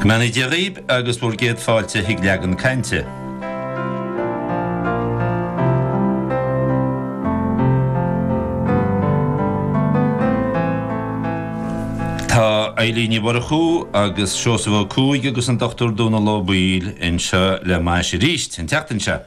Go mbeannaí Dia dhaoib agus bhur gcéad fáilte chuig Leagan Cainte. Tá Eilín Ní Mhurchú agus Seosamh Ó Cuaig agus an Dr. Dónal Ó Baoill anseo le m'ais aríst an tseachtain seo.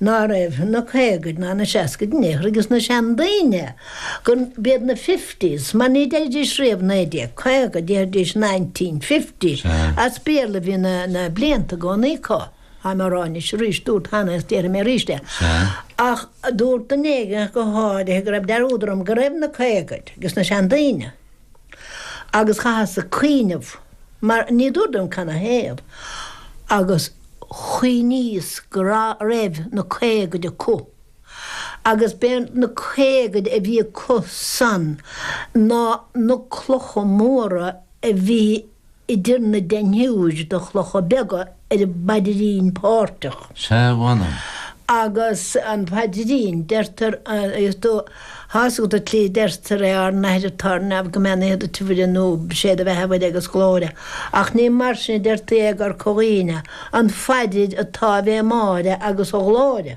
ná raibh na caogaid ná na seascaid in aon chor ages na seandaoine go mb'iad na fifties mar ní deiridís riamh naoi déag caoga déarfaidís nineteen fifty as Béarla a bhí na na blianta i gcónaí acu táim á rá anois arís dúrt cheana agus déarfaidh mé arís é ach dúirt duine éigin go háirithe go raibh dearúd orm go raibh na caogaid ages na seandaoine. agus chaitheas ag cuimhneamh, mar ní dúradh liom canathaobh, agus chuimhníos go raibh na caogaid acu, agus b'é na caogaid a bhí acu san ná na clocha móra a bhí idir na deichniúir de chlocha beaga ar an bpaidrín páirteach. Sea, mh'anam. Agus an paidrín, deirtear, tá a fhios agat an tslí a deirtear é, Ár nAthair atá ar neamh, go mbeannaíthear duit a Mhuire nú Sé do bheatha a Mhuire agus glóire. Ach ní mar sin a deirtí é i gCorca Dhuibhne, an phaidir an tÁivé Máire agus an Ghlóire.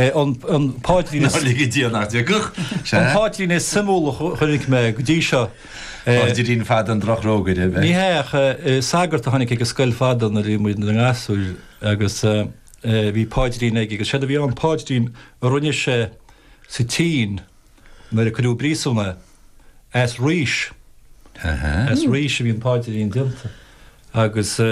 An páidrín is. Ná ligidh Dia nach dtiocfadh sé. An páidrín is suimiúla a chonaic mé go dtí seo. Páidrín fada an drochrógaire, an ea? Ní hea, ach sagart a tháinig ag an scoil fadó nuair a bhí muid ina ngasúir agus bhí páidrín aige agus séard a bhí ann, páidrín a rinne sé sa tSín nuair a cuireadh i bpríosún é. As rís, as rís a bhí an páidrín déanta agus.